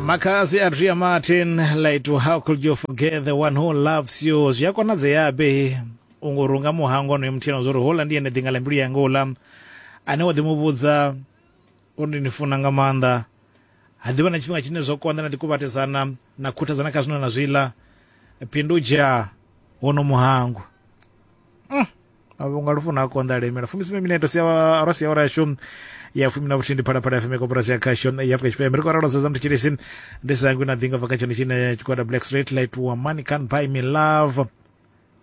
makazi a ria martin laitu how could you forget the one who loves you zwi a konadzeabe u ngo runga muhango onoyo muthena zwo ri hola ndi ene ḓinga ḽa mbilu yanga uḽa ane wa ḓi mu vhudza uri ndi ni funa nga maanḓa ha ḓivha na tshifhinga tshine zwo konḓa na ḓi kuvhatedzana na khuthadzana kha zwino na zwiḽa phindudzha wono muhango mavhunga lufu na konda lemela fumisumbe mineto sia ro sia ora yashu ya fumi na vhuthihi ndi phalaphala ya fumi koporasi ya khasho ya afurika tshipembe ri khou ralo sedza mthetshelesi ndi sangwi na ḓinga bva kha tshone tshine tshigwada black straight light wa money can buy me love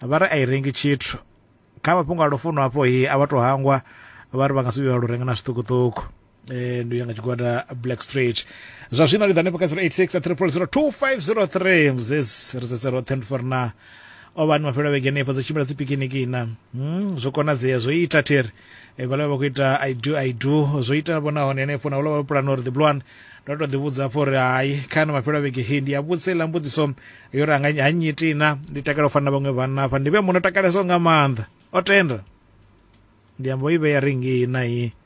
vha ri a i rengi tshithu kha mafhungo a lufuno afho hi a vha to hangwa vha ri vha nga si vhuya vha lu renga na zwiṱukuṱuku eh, ndi u ya nga tshigwada black street zwa zwino ri ḓa hanefho kha 086 300 2503 mzes ri sedze roṱhe ndi for na o vhani mafhelo a vhege henefho dzo tshimbila dzi pikiniki na mm, zwo konadzea zwo ita theri e, vhala vha khou ita i do i do zwo ita vhona hone henefho na vhala vha pulana uri the blue one ndo to ḓivhudza hafho uri hai khana mafhelo a vhege he ndi a vhudza iḽa mbudziso yo ri anga ha nyiti na ndi takala u fana na vhaṅwe vhanna hafha ndi vhe muno takalesaho nga maanḓa o tenda ndi amba i vheya ringi na i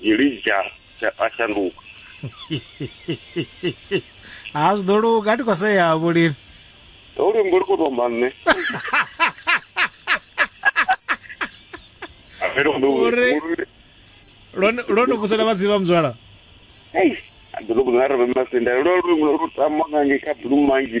dzhilidza a shanduka ha zwi ḓo luga ndi khou sea vhulimi ho luimbo lu khou tomba nṋe Uri- lwone lwone vhusela vha dzivha muzwala ḓolobo na reve masenda lwo luimbo lu tamba kange kha blue mangi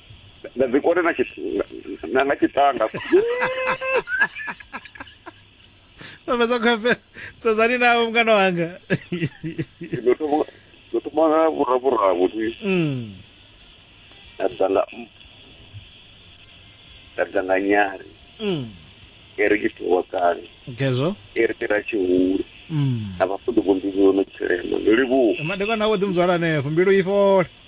na dzi kone na tshi- na- na tshitanga vhavhedza khwefe sedzani navo mngana wanga ndo thoma- ndo thoma nga vhuravhuravu ti Mm. nda ḓa nga nda ḓa nga nyari Mm. e ri itiwa kale ngezwo e ri tera tshihulu Mm. na vhafuḓi vho mbilu no tshilema ndo livhuwa madekwana awo ḓi mudzwala hanefho mbilu i fhole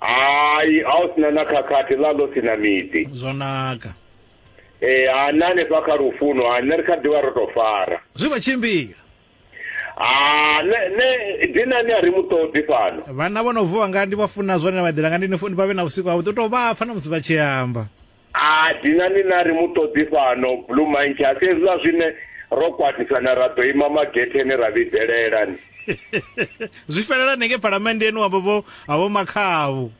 hai a u sina na khakhathi ḽa ḽo sina miḓi zwo naka ee ha na hanefha kha lufuno ha nṋe ri kha ḓivha ro to fara zwi khou tshimbila ha ne dinani a ri mu ṱoḓi fhano vhana vho no vuwa nga ndi vha funa zwone vha ḓela nga ndi ni funi vha vhe na vhusiku havhuḓi u tou vha pfa na musi vha tshi amba A dinani na ri mu ṱoḓi fhano, Blue Monkey, a si hezwiḽa zwine ro kwatisana ra ḓo ima magetheni ra vhidzelela ni. Zwi fhelelani ngei phalamenndeni wa vho ha vho Makhaavhu.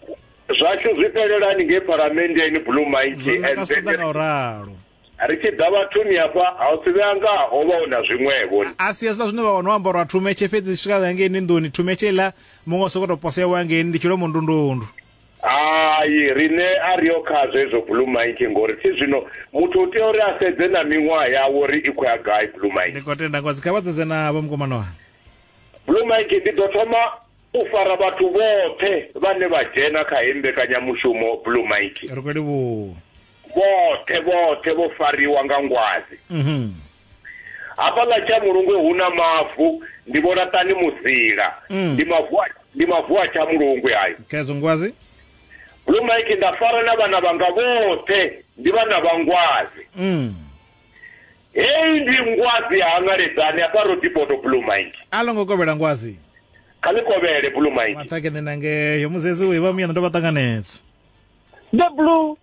Zwashu zwi fhelelani ngei phalamenndeni, Blue Monkey, and then ri tshi ḓa vhathuni hafha ha u si vhe anga ho vha hu na zwiṅwevho ni. A si hezwiḽa zwine vha wana o ambarwa thumetshe fhedzi swika ngei ni nḓuni thumetshe iḽa muṅwe o sokou tou posewa ngei ndi tshilomondundundu. hai rine a ri yo kha zwezwo blue mike ngori thi zwino muthu u tea uri a sedze na miṅwaha yawo uri i khou ya gai blue mike ndi khou tenda ngozi kha vha dzedze na vho mukomano wanga blue mike ndi ḓo thoma u fara vhathu vhoṱhe vhane vha dzhena kha hei mbekanyamushumo blue mike ri khou livhuwa vhoṱhe vhoṱhe vho fariwa nga ngwazi mhm. hafhaḽa tsha mulungwe hu na mavu ndi vho laṱani muzila mm. ndi mavu ndi mavu a tsha mulungwe ayo kedzo ngwazi blue mike nda fara na vhana vhanga vhoṱhe ndi vhana vha ngwazi mm. heyi ndi ngwazi ya hangaledzani hafha rodipoto blue mike a lo ngo kovhela ngwazi kha ni kovhele blue mike maṱhake ni nangeyo muzezi u iva muyana ndo vha ṱanganedza the blue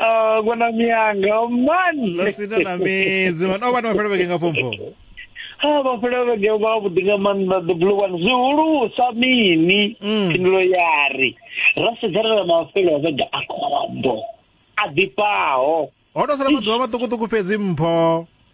Oh, kona miyanga oh, man ḽo sina na midzi man o vha ni mafhelo vhege nga phomfo ha mafhelo vhege vha vhuḓi nga maanḓa the blue one zwihulusa mini Mm. phindulo ya ri ra sedzana na mafhelo a vhege a khombo a ḓifhaho ho to sala maḓuvha maṱukuṱuku fhedzi mpho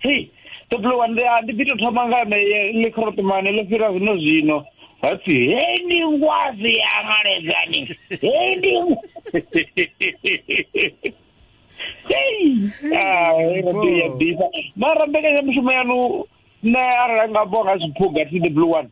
hei toplowa ndi ndi ḓi to thoma nga na le khrotomane le fira zwino zwino hapfi hei ndi ngwazi ya ngaledzani hei ndi mara mbekanyamushumo yanu nṋe arali nga bo nga zwiphuga thi the blue one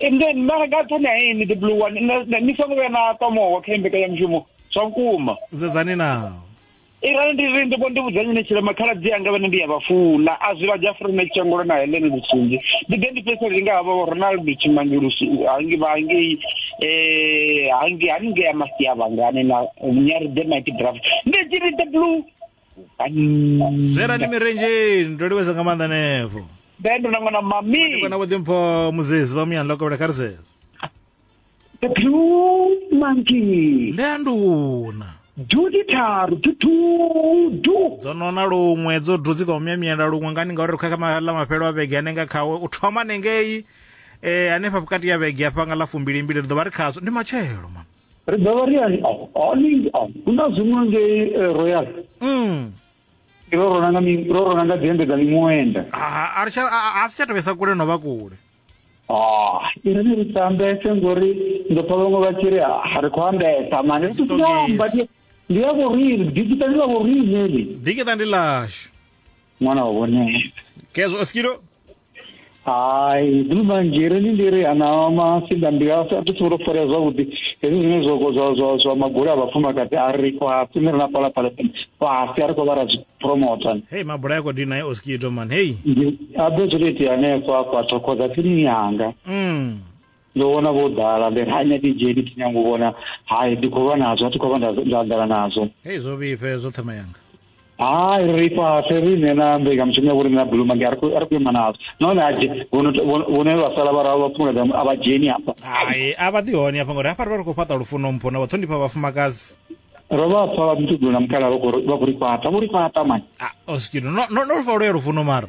and then mara nga nṱhani ha ini the blue one ni songo vhuya na ṱwa muhoho kha imbekanyamushumo zwa vhukuma nzedzani naho irani ndi ri ndi vho ndi vhudzanye ni tshilema khaladzi anga vhane ndi ya vha funa a zwi vha dzha furi na tshangolo na helene lutsinzi ndi ḓe ndi fhesa ri nga havha vho ronaldo tshimange lusi hangi vha hangei um hangi haningei ya masiavhangani na nyari the mighty draft ndi tshi ri the blue zwerani mirenjeni ndo livheza nga maanḓa nevo ndendo na ṅwana mami kana vho ḓimpho muzezi vha muyani lokobela kha ri zeze the blue monkey ndanduna duti tharu tutudu dzo nona luṅwe dzo dudzi ka umyamyela luṅwe ngani ngauri ri khakha la mafhelo a vhege anenga khawe u thoma nengei um eh, hanefha vhukati ya vhege afha nga ḽa fumbilimbili ri ḓo vha ri khazwo ndi matshelo mama ri ḓo vha ri ali ali hu na zwiṅwe ngei eh, royal mm. ro rona nga ro rona nga dzembe dza miṅwenda a ri tsha a si tsha tovhesa kule no vha kule ah iri ni ri tambese ngori ndo pfa vhaṅwe vha tshi ri ha ri khou ambesa mani ri tiamba ndi ya vhorine dikita ndi ḽa vhorine ni dikita ndi ḽashu ṅwana wa vhonesa kezwo skido hai ndi mumanzhiri ndi ndiri ana masinda ndi a thi tsivho to farea zwavhuḓi hezwi zwine zwa zwa zwa zwa magula a vhafumakadzi a ri kwa tsini ri na pala pala fhasi a ri khou vha ra zwi promota hei mabula ya kodi naye oskito man hei ndi a ḓo zwi to itea hanefho a kwa thokoza tsini yanga mm. ndo vhona vho ḓala ndi ha nya DJ ndi tshi nyanga u vhona hai ndi khou lwa nazwo a thi khou vha nda anḓana nazwo hei zwo vhifhe zwo thoma yanga hai ri fhasi riṋe na mbekanyamushumo ya vhoriṋe na buluma nge a ri khou ima nazwo nahone aje vhone vha sala vha ralo vha phumula a vha dzheni hafha hai a vha ḓi hone hafha ngori hafha ri vha ri khou fhaṱa lufuno mpho na vhaṱhonifha vhafumakadzi ro vha pfa vha mutugula mukhala vha khou ri fhaṱa vho ri fhaṱa mani ah, oskido no no no fa lwo ya lufuno mara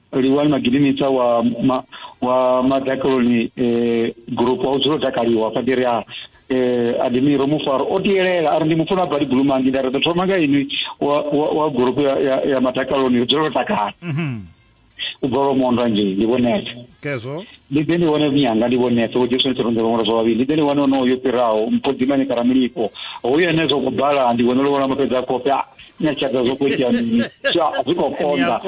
Liwani Magininisa wa ma, wa Madakaloni eh, group wa udzula takaliwa padiri a eh, Adimiro Mufaro o tiyelela ari ndi mufuna badi gulumangi nda ri thoma nga inwi wa, wa, wa group ya, ya, ya Madakaloni udzula takala mm -hmm. u bva lomondwa nje ndi vhonete kezwo ndi ḓe ndi vhone vhunyanga ndi vhonese vho jesu nitshirunze vhaṅwalo zwa vhavhili ndi ḓe ndi vhone onoyo fhiraho mphodzimane kana mulipo hoyo ene zwo kubala ndi vhone lovhola mafhedza a khofhe ah, nyatshadza zwo khou itea mini zwi khou konda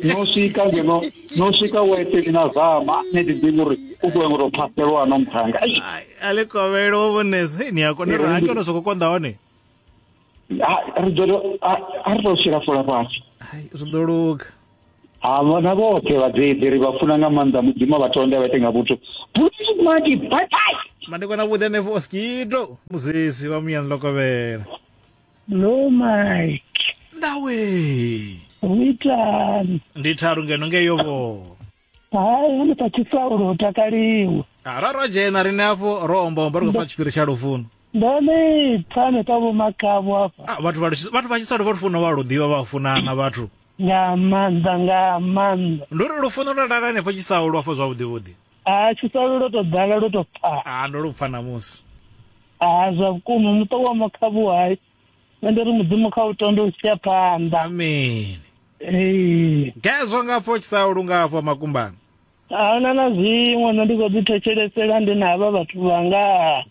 no swika ngeno no swika weteni na zama ne ḓi ḓivhi uri u ḓo ngo tou phaselwa no mphanga ale kovhelo wo vhonese ni a kona uri ha ke ono zwo khou konda hone Ha- ri ḓo to- ha- ha ri tou shela fola fhasi hai zwi ḓo luga ha vhona vhoṱhe vhadzeidzi ri vha funa nga maanḓa mudzimu a vha tonde a vha ite nga vhuthu Please, madi bye bye madekwana vhuḓi hanefho oskido muzezi vha muyani ḽo kovhela Lo Mike, ndawe hu itani? ndi tharu ngeno ngeyo vho hai hune pa tshisaulo u takaliwe Ah, ra ra dzhena riṋe hafho ro ombaomba ri khou pfa tshipiri tsha lufuno ndo ni pfa hanefha vhomakavho hafha Ah, vhathu vha lu- vhathu vha tshisalo vha lufuno vha lu ḓivha vha funana vhathu nga maanḓa nga maanḓa ndi uri lufuno lwa lala henefho tshisaulo hafho zwavhuḓi vhuḓi ha tshisaulo lwo to ḓala lwo to pfala Ah, ndo lu pfa namusi ha zwa vhukuma muṱa wa makhavhu hai nṋe ndi ri mudzimu kha u tonde u tshi ya phanḓa amen ee gezwo nga pfo tshisaulu nga afho makumbani ahuna na zwiṅwe nṋe ndi khou ḓi thetshelesela ndi na havha vhathu vhanga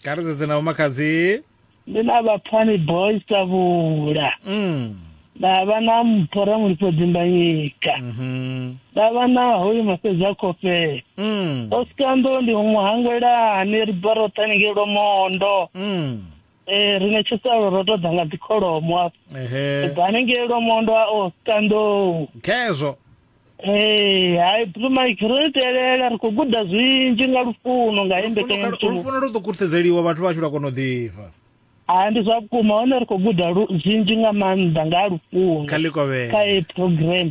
kha ri sedze na vhomakhadzi ndi na vhapfani boys tavhula mm. nda vha na mpho ramulifho dzimbanyika mhm, nda vha na hoyu mafhedzi a khofhela mm. osikando ndi muhangwelani ri bva roṱhe haningei lwomondo mm. Eh, rine tshisalo ro to ḓa nga dzikholomo hafha ehe bva hanengei lwamondo a o standou khezwo Hey, hai Blue Mike ro itelela ri khou guda zwinzhi nga lufuno nga hei mbekanyamushumo lufuno lu ḓo kurthedzeliwa vhathu vhashu lwa kona u ḓifha ha ndi zwa vhukuma hone ri khou guda lu- zwinzhi nga maanḓa nga ha lufuno kha likovhela kha heyi program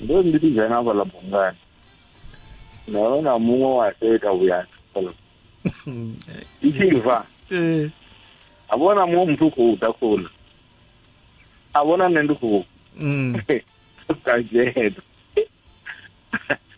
ndo ri ndi ḓi dzhena hafhaḽa bungani nda vhona muṅwe wa teta vhuya fhaḽa i tshi bva eh. a vhona muṅwe muthu u khou ḓa khou ḽa a vhona nṋe ndi khou mm. ka dzhena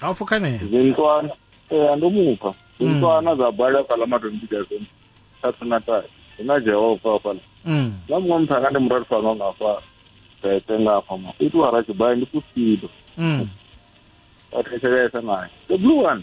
ha fukanea zintswana ee ndo mupha zintswana dza bala fhala matombiga zone thatu na tatu hu na jehova fhala Mm. na muṅwe muthu anga ndi murari fano nga fa tete nga fa ma itu ara tshibaya ndi kusido Mm. a thetshelesa naye the blue one